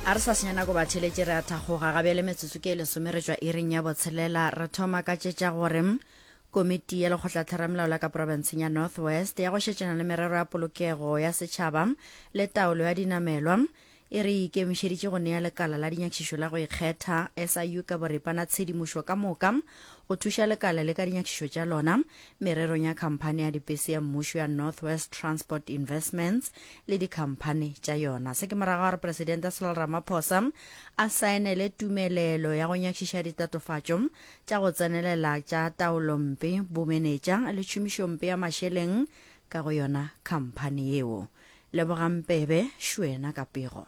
a re sa senya nako ba theletše re a thakgoga ga bjale metsotso ke e lesome re tšwa ireng ya botshelela re thoma ka tšetša gore komiti ya lekgotlatheramelao la ka porofenseng ya north west ya go šetšana le merero ya polokego ya setšhaba le taolo ya dinamelwa e re ikemišeditše go nea lekala la dinyakišišo la go ikgetha siu ka boripana tshedimošo ka moka go thuša lekala le ka dinyakišišo tša lona mererong ya khamphani ya dibese ya mmušo ya North West Transport Investments le dikhamphani tša yona. Se ke morago ga gore Presidente Cyril Ramaphosa a saenele tumelelo ya go nyakišiša ditatofatšo tša go tsenelela tša taolompe, bomenetša le tšhomišompe ya mašeleng ka go yona khamphani yeo. Lebogang Mpebe, Šwena ka pego.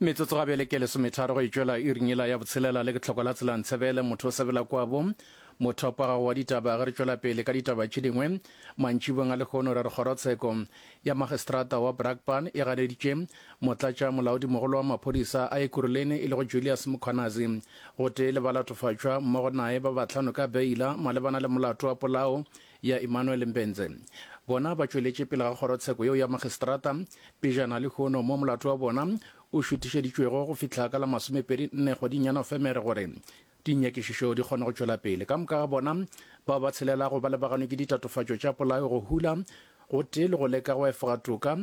Metsotso gabjale ke lesometharo go e tšwela iring yela ya botshelela le ke tlhoko la tshelang tshebele motho o sebela kwabo mothopo gago wa ditaba ge re tšwela pele ka ditaba tše dingwe mantšibong a lehono re re kgorotsheko ya magistrata wa Brakpan e ganeditše motlatša molaodimogolo wa maphodisa a ekuruleni e lego Julius Mkhwanazi gotee le ba latofatšwa mmogo nae ba batlhano ka beila malebana le molato wa polao ya Emmanuel Mbenze. Bona ba tšweletše pele ga kgorotsheko yeo ya Magistrata pejana lehono mo molato wa bona o šuthišeditšwego go fihla ka la masomepedi nne kgweding ya Nofemere gore dinyakišišo di kgone go tšwela pele. Ka moka ga bona bao ba tshelelago ba lebaganwe ke ditatofatšo tša polao, go hula gotee le go leka go efoga toka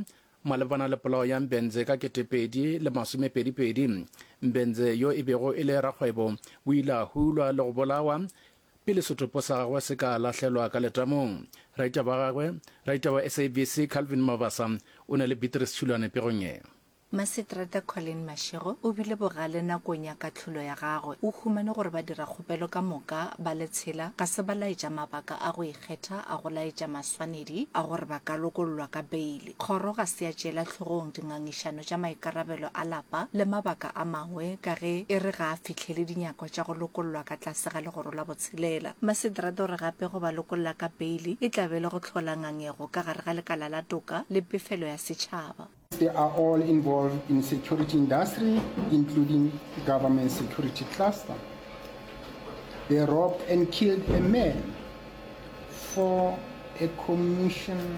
malebana le polao ya Mbenze ka ketepedi le masomepedipedi. Mbenze yo e bego e le rakgwebo o ile a hulwa le go bolawa Pele setopo sa gagwe se ka lahlelwa ka letamong, raita ba gagwe, raita wa SABC Calvin Mabasa, o ne le Beatrice Tshulwane pegong ye. Maseterata Colleen Mashego o bile bogale nakong ya kahlolo ya gagwe. O humane gore badirakgopelo ka moka ba le tshela ga se ba laetša mabaka a go ikgetha a go laetša maswanedi a gore ba ka lokollwa ka beile. Kgoro ga se ya tšeela hlogong dingangišano tša maikarabelo a lapa le mabaka a mangwe ka ge e re ga a fihlele dinyako tša go lokollwa ka tlase ga Legoro la Botshelela. Maseterata o re gape go ba lokolla ka beili e tla be e le go hlola ngangego ka gare ga lekala la toka le pefelo ya setšhaba. They are all involved in security industry including government security cluster. They robbed and killed a man for a commission.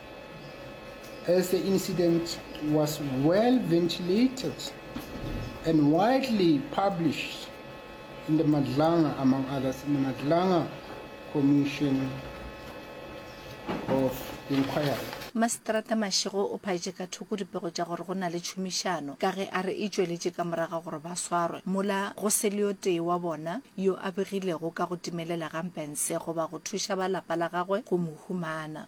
As the incident was well ventilated and widely published in the Madlanga, among others, in the Madlanga Commission of Inquiry. Maseterata Mashego o phaetše ka thoko dipego tša gore go na le tšhomišano ka ge a re e tšweletše ka morago ga gore ba swarwe mola go se le yo tee wa bona yo a begilego ka go timelela ga Mbhense goba go thuša ba lapa la gagwe go mo humana.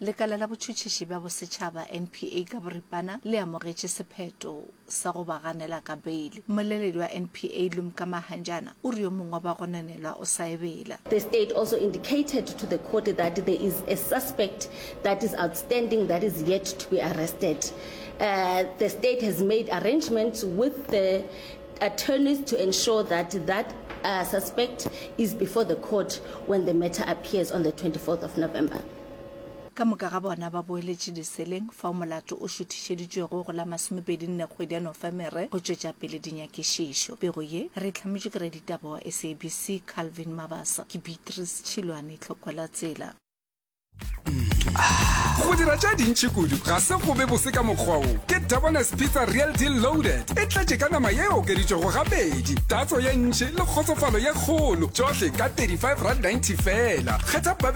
Lekala la Botšhotšhiši bja Bosetšhaba, NPA, ka boripana le amogetše sephetho sa go ba ganela ka beile. Mmoleledi wa NPA, Lumka Mahanjana, o re yo mongwe wa bagononelwa o sa ebela. The state also indicated to the court that there is a suspect that is outstanding that is yet to be arrested. The state has made arrangements with the attorneys to ensure that that suspect is before the court when the matter appears on the 24th of November. Ka moka ga bona ba boeletše diseleng, fao molato o šuthišeditšwego go la masomepedi nne kgwedi ya Nofemere go tšwetša pele dinyakišišo. Pego ye re e hlametšwe ke raditaba wa SABC Calvin Mabasa. Ke Beatrice Tšhilwane, tlhoko la tsela. Go dira tša dintši kudu ga se go be bose ka mokgwa wo. Ke Debona's Pizza Real Deal Loaded e tletše ka nama ye okeditšwego gabedi, tatso ye ntši le kgotsofalo ye kgolo, tšohle ka 35 rand 90 fela. Kgetha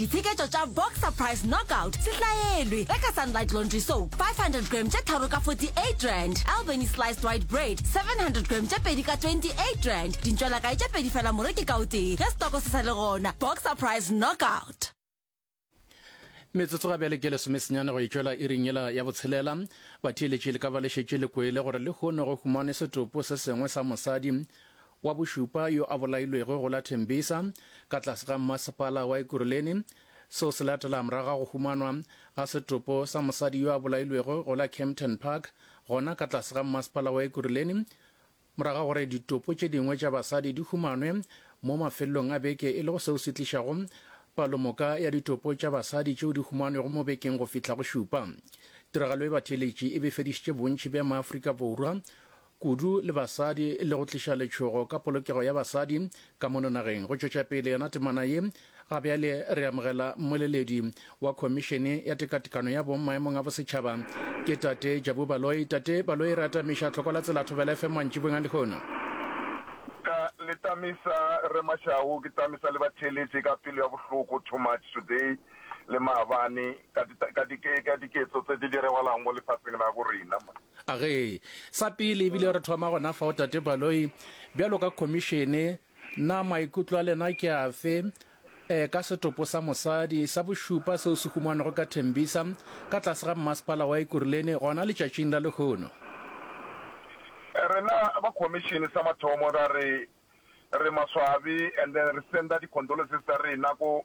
Ditsheketšo tša Boxer Price Knockout sehlaelwe ge ka Sunlight Laundry Soap 500 gram tše tharo ka 48 rand, Albany Sliced White Bread 700 gram tše pedi ka 28 rand, dintšwelakae tše pedi fela moreki ka o tee ge setoko se sa le gona. Boxer Price Knockout. Metsotso ga bjale ke lesomesenyane go itšwela iring yela ya botshelela. Batheeletši le ka ba le šetše le kwele gore lehono go humanwe setopo se sengwe sa mosadi wa bošupa yo a bolailwego go la Tembisa ka tlase ga mmasepala wa Ekurhuleni. Seo se latela morago ga go humanwa ga setopo sa mosadi yo a bolailwego go la Kempton Park gona ka tlase ga mmasepala wa Ekurhuleni morago ga gore ditopo tše dingwe tša basadi di humanwe mo mafelelong a beke e lego seo se tlišago palomoka ya ditopo tša basadi tšeo di humanwego mo bekeng go fihla go šupa. Tiragalo e batheeletši e befedišitše bontši bja Maaforika Borwa kudu le basadi le go tliša letšhogo ka polokego ya basadi ka mono nageng. Go tšwetša pele yona temana ye, ga bjale re amogela mmoleledi wa Khomišene ya Tekatekano ya Bong maemong a Bosetšhaba, ke Tate Jabu Baloyi. Tate Baloyi, re atamiša tlhoko la Tsela Thobela FM mantšibong a lehono. Ka le tamisa rre Mashau, ke tamisa le batheeletši ka pelo ya bohloko too much today. le maabane ka di, ka di, ka diketso tse di diragalang mo lefatsheng la go rena. Age, sa pele ebile re thoma gona fa o tate Baloi, bjalo ka khomišene, na maikutlo a lena ke afe e, ka setopo sa mosadi sa bošupa seo se humanago ka Tembisa ka tlase ga mmasepala wa Ekurhuleni gona letšatšing la lehono? Rena ba khomišene sa mathomo ra re re maswabi and then re senda di-condolences tsa rena ko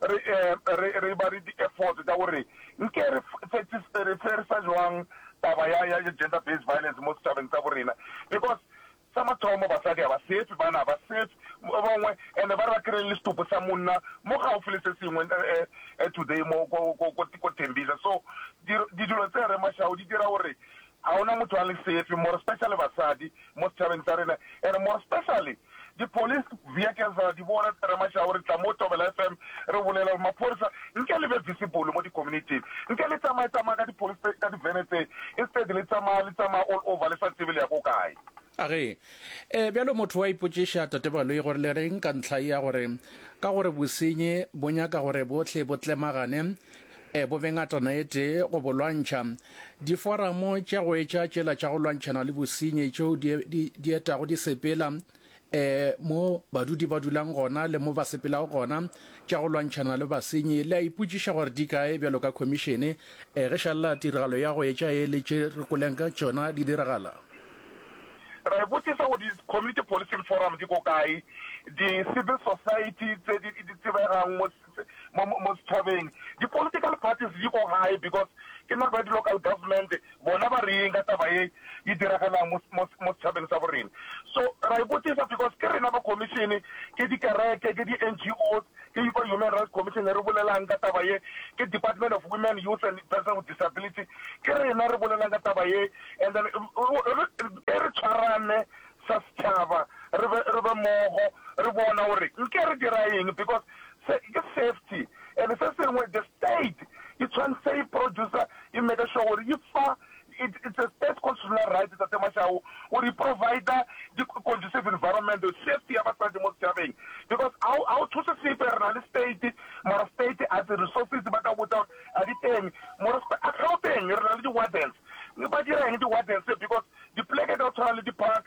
re, re, re eba le di-efforts tša gore nke re fetise, re ferisa jwang taba ya, ya gender based violence mo setšhabeng sa borena because sa mathomo basadi ga ba sefe, bana ga ba sefe, ba bangwe ene ba re ba kry-ile le setupo sa monna mo gaufi le se sengwe today mo ko, ko, ko, ko Tembisa so di, di dilo tse rre Mashau di dira gore Ga gona motho a le safe, more specially basadi mo setšhabeng sa rena and more specially di police vehicles ra di bona tse re mashago re tla mo Thobela FM re bolela gore maphorisa nke le be visible mo di community-ing, nke le tsamaye tsamaya ka di police ka di vene tse instead le tsamaya le tsamaya all over le sa tsebe le ya ko kae. A re, E, bjalo motho wa ipotšiša, Tate Baloyi, gore le reng ka ntlha ya gore ka gore bosenyi bo nyaka gore bohle bo tlemagane, E bobe ngatana e tee go bo lwantšha. Diforamo tša go etša tšela tša go lwantšhana le bosenyi tšeo di, di, di etago di sepela e, mo badudi ba dulang gona le mo ba sepelago gona tša go lwantšhana le basenyi, le a ipotšiša gore di kae bjalo ka khomišene e, ge šalla tiragalo ya go etša ye le tše re koleng ka tšona di diragala. Re botšiša gore di-community policing forums di ko kae, di-civil society tse di, di tsebegang mo mo mo setshabeng di political parties di ko gae because ke nako ya di local government bona ba reng ka taba ye e diragalang mo mo mo setshabeng sa borena so ra ipotisa because ke rena ba commission ke di kereke ke di NGOs ke yi kwa human rights commission re bolelang ka taba ye ke department of women youth and person with disability ke rena re bolelang ka taba ye and then e re tshwarane sa setshaba re be re be mogo re bona gore nke re dira eng because Se ke safety and se sengwe the state e tshwanetse e producer e make sure gore e fa it it's a state constitutional right tate Mashau gore e provider di conducive environment safety ya basadi mo setšhabeng because ha ha o thuse sepe re na le state mara state a di resources ba ka botsa a di teng mora a Gauteng re na le di wardens ba dira eng di wardens because di pleke ka tshwana le di park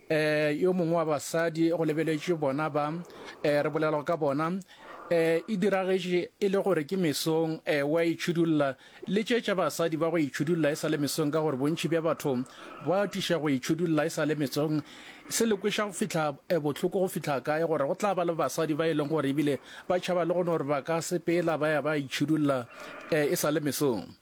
Eh, yo mongwe wa basadi, go lebeletšwe bona ba, eh, re bolelwa ka bona, eh, e diragetše e le gore ke mesong, eh, wa itšhudulla, le tše tša basadi ba go itšhudulla e sa le mesong, ka gore bontši bja batho ba atiša go itšhudulla e sa le mesong. Se le kweša go fihla, eh, bohloko go fihla kae, gore go tla ba le basadi ba e leng gore ebile ba tšhaba le gone gore ba ka sepela ba ya ba itšhudulla, eh, e sa le mesong.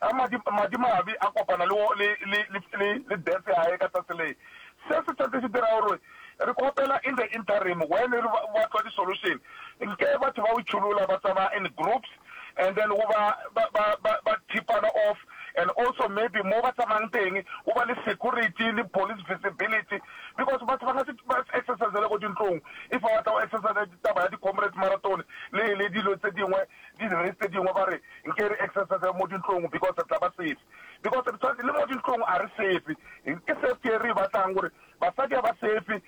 A madi, madimabe a kopana le, le, le, le, le, le death ya Gage ka tsatsi le. Se se tshwantse se dira gore re kgopela in the interim when re ba, ba tlwa di-solution, nke batho ba itšholola ba tsamaya in groups and then go ba, ba, ba, ba, ba thipana off and also maybe mo ba tsamayang teng go ba le security le police visibility because batho ba ka se, ba se exercisele ko dintlong if ba batla go exercise taba ya di-comrades marathon le, le dilo tse dingwe Didiris tse dingwe ba re nke re exercise mo dintlong because re tla ba safe. Because re tshwanetse le mo dintlong a re safe. Ke safety e re e batlang gore basadi a ba safe.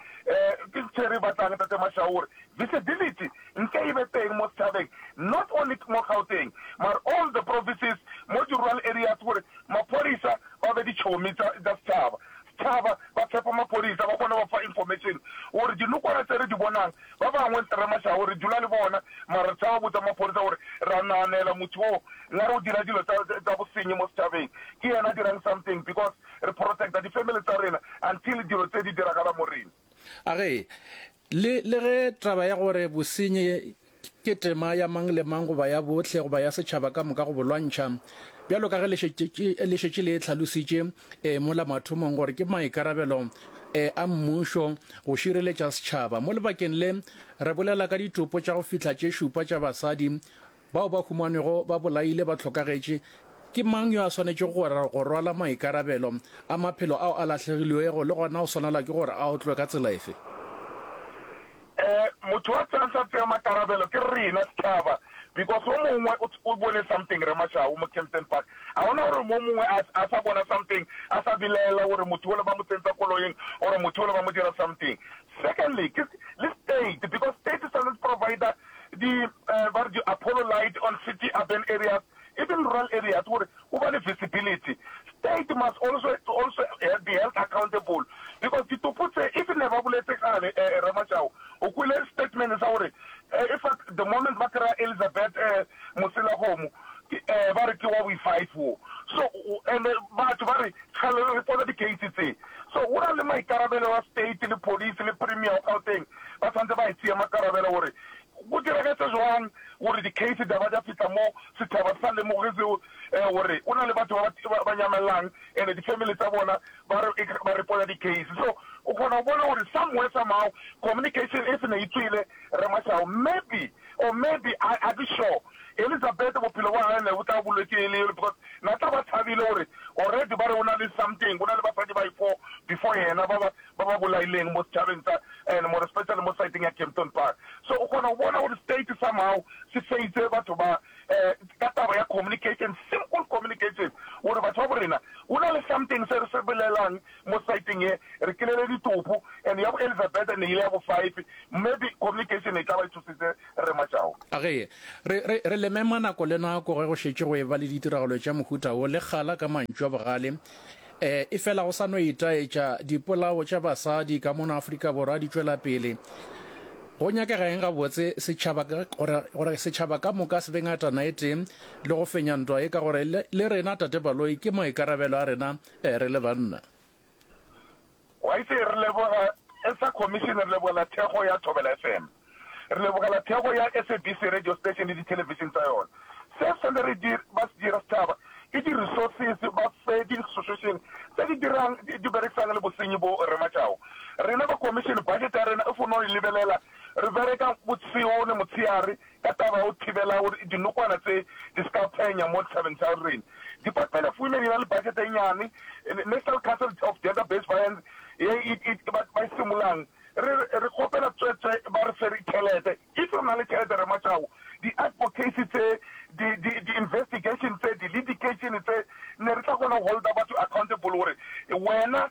Ke ntho e re e batlang Ntate Mashau gore visibility nke e be teng mo setšhabeng not only mo Gauteng mare all the provinces mo di-rural areas gore maphodisa ba be ditšhomi tsa setšhaba. tšhaba ba tshepa maphodisa ba kgona go fa information gore dinokwana tse re di bonang ba bangwe re mašabo re dula le bona mara re tšhaba botsa maphodisa gore re a naganela motho o ngare o dira dilo tsa bosenyi mo setšhabeng ke yena a dirang something because re protecta di family tsa rena until dilo tse di diragala mo rena. A re, Le, le ge taba ya gore bosenyi ke tema ya mang le mang goba ya bohle goba ya setšhaba ka moka go bolwantšha, bjalo ka ge le šetše, le šetše le e tlhalositše e, mola mathomong, gore ke maikarabelo e, a mmušo go šireletša setšhaba. Mo lebakeng le, re bolela ka ditopo tša go fihla tše šupa tša basadi Bao ba humanwego ba bolaile ba hlokagetše, ke mang yo a swanetšego go rwala maikarabelo a maphelo ao a lahlegilwego le gona o swanelwa ke gore a otlwe ka tsela efe? Ee, motho yo a tlang sa tsea makarabelo ke rena sethaba because o mongwe o bone something re Mashau mo Kempton Park. A gona gore mo mongwe a a sa bona something a sa bilaela gore motho ole ba mo tsentsa koloing or motho ole ba mo dira something. Secondly, ke le state because state e swanetse provider di eh, ba re di-apollo light on city urban areas even rural areas gore o ba le visibility state must also also eh, be held accountable because ditopo tse if ne ba boletse gale eh, eh, ramajao o kwele statement sa gore eh, in fact the moment ba kry-a elizabeth eh, moselagomo ke ee ba re ke wa wi five wo so ene batho ba re tshwelele re tsona di case tse so go na le maikarabelo wa state le police le premier wa gauteng ba tshwanetse ba e tseya makarabelo gore go diragetse jwang gore di case di ba di fitla mo sethaba sa lemoge seo eh, gore o na le batho ba ba nyamelelang ene di family tsa bona ba re ba re pola di case so o kgona go bona gore somewhere somehow communication e se ne e tswile re masao maybe Or maybe, I, I be sure, Elizabeth bophelo bja gagwe ne bo tla bolwetše e le yole because na tla ba thabile gore already ba re o na le something, go na le basadi ba i-four before yena ba ba, ba ba bolaileng mo setšhabeng sa, and more especially mo side-eng ya Kempton Park. So o kgona go bona gore state somehow se feitse batho ba, um ka taba ya communication, simple communication, gore batho ba bo rena go na le something se re se bolelang Mo saeteng ye re kelele ditopo and ya bo Elizabeth ne ile ya bo five maybe communication e tlaba e thusitse Rre Majau. Ge re, re, re lemema nako le nako ge go šetše go eba le ditiragalo tša mohuta wo, le kgala ka mantšu a bogale, e, efela go sa no itaetša, dipolao tša basadi ka mono Afrika Borwa di tšwela pele. Go nyakega eng gabotse? Setšhaba, gore, gore setšhaba ka moka se be ngatana e tee le go fenya ntwa ye, ka gore le, le rena, Tate Baloyi, ke maikarabelo a rena. Ee, re le banna. Waise re leboga sa commission, re lebogela thekgo ya Thobela FM, re lebogela thekgo ya SABC radio station le dithelevishene tsa yona. Se se le re ba se dira sethaba ke di-resources, ba fe di-institution tse di dirang di berekisang le bosenyi bo re matšago. Rena ba commission budget ya rena e fo no e lebelela, re bereka botsheo le motsheare. ka taba ya go thibela gore dinokwana tše di se ka phenya mo ditšhabeng tša rena. Department of Women e na le budget e nnyane, National Council of Gender Based Violence ye e ba e simolang. Re re kgopela tswetswe ba re fe tšhelete. If re na le tšhelete re matšago. Di advocacy tše, di di di investigation tše, di litigation tše, ne re tla kgona go holder batho accountable gore wena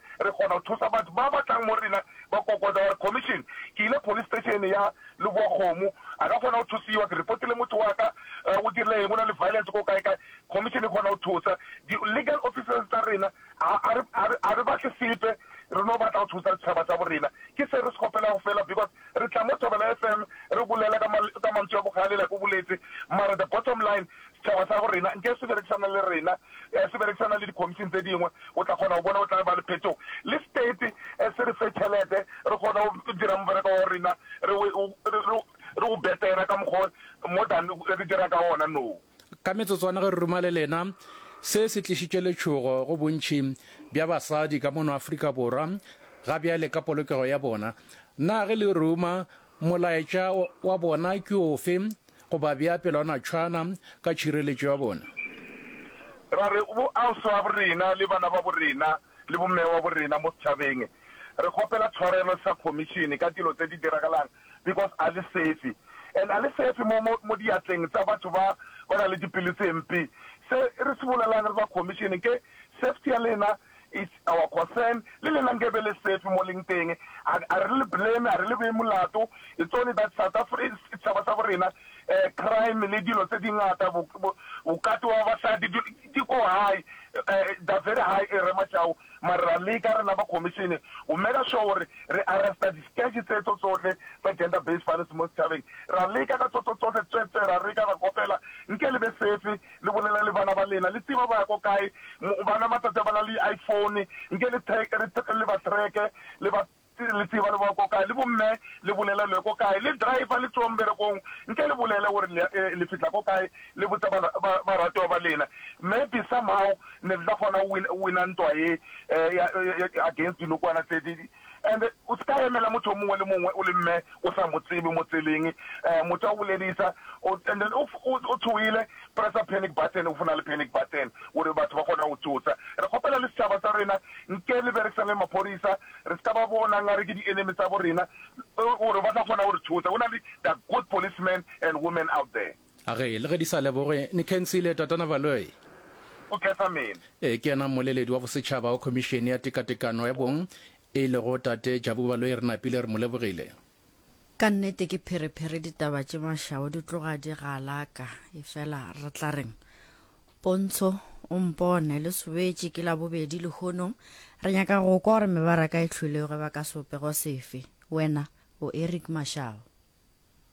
re kgona go thusa batho ba ba tlang mo rena ba kokota gore, Commission, ke ile police station ya Leboakgomo, a ka kgona go thusiwa, ke repotile motho wa ka, o dirile eng, o na le violence ko kae kae, Commission e kgona go thusa. Di legal officers tsa rena ga re batle sepe, re no batla go thusa setšhaba sa bo rena. Ke se re se kgopelago fela because re tla mo Thobela FM re bolela ka mantswe a bogale like o boletse, mara the bottom line Setšhaba sa go rena nke se berekisana le rena, se berekisana le dikhomising tse dingwe, o tla kgona go bona go tla ba le phetogo. Le state se re fe tšhelete re kgone go dira mobereko wa go rena re re o betera ka mokgwa o more than re dira ka ona now. Ka metsotswana ge re ruma le lena, se se tlišitše letšhogo go bontši bja basadi ka mono Afrika Borwa ga bjale ka polokego ya bona. Na ge le ruma Molaetša wa bona ke ofe? Go ba bea pelwanatšhwana ka tšhireletšo ya bona. Ra re, Boausi wabo rena le bana babo rena le bomme wabo rena mo setšhabeng, re kgopela tshwarelo sa Khomišene ka dilo tse di diragalang because a le safe and a le safe mo, mo, mo diatleng tsa batho ba ba na le dipelo tse mpe. Se re se bolelang re ba Khomišene ke safety ya lena. It's our concern, le lena nke be le safe mo leng teng, a a re le blame, a re le bee molato, it's only that South Afri, setšhaba sa bo rena, eh, crime le dilo tse di ngata, bo, bo, bokate wa basadi, di, di ko high, eh, they're very high, eh, Rre Mashau, mare ra leka rena ba commission go meka sure gore re arresta di sketch tse tso tsohle tsa gender based violence mo setšhabeng, ra leka ka tso tso tsohle, tswetswe, ra leka, ra kopela, nke le be safe. Le bolela le bana ba lena, le tseba ba ya ko kae. Bana matsatsi a ba na le di iPhone, nke le track, re track, le ba track-e, le ba, le tseba le boya ko kae. Le bomme, le bolela le ya ko kae. Le driver le tsowa mberekong, nke le bolele gore le, le fihla ko kae, le botsa ba, ba, baratiwa ba lena. Maybe somehow ne le tla kgona go win, win-a ntwa ye, ya, against dinokwana tse, di, And o ska emela motho o mongwe le mongwe o le mme o sa mo tsebe mo tseleng um motho a go boledisa o and then o o tshohile pressa panic button o fona le panic button gore batho ba kgona go tsotsa re kgopela le setšhaba sa rena nke le berekisang le maphodisa re ska ba bona nga re ke di enemy tsa bo rena gore ba tla kgona go re tsotsa go na le the good policemen and women out there A re, le ge di sa leboge, ni khensile, Tatana Baloyi? O khetha mena. Ee, ke yena mmoleledi wa bosetšhaba wa Khomišene ya Tekatekano ya Bong, e lego Tate Jabu Baloyi, re napile re mo lebogile. Ka nnete ke pherephere ditaba tše mašao di tloga di galaka, efela re tla reng? Pontsho, o mpone, le sobetše, ke Labobedi lehono, re nyaka go kwa gore mebaraka e hlwilego e ba ka sebopego sefe. Wena o Eric Mashao.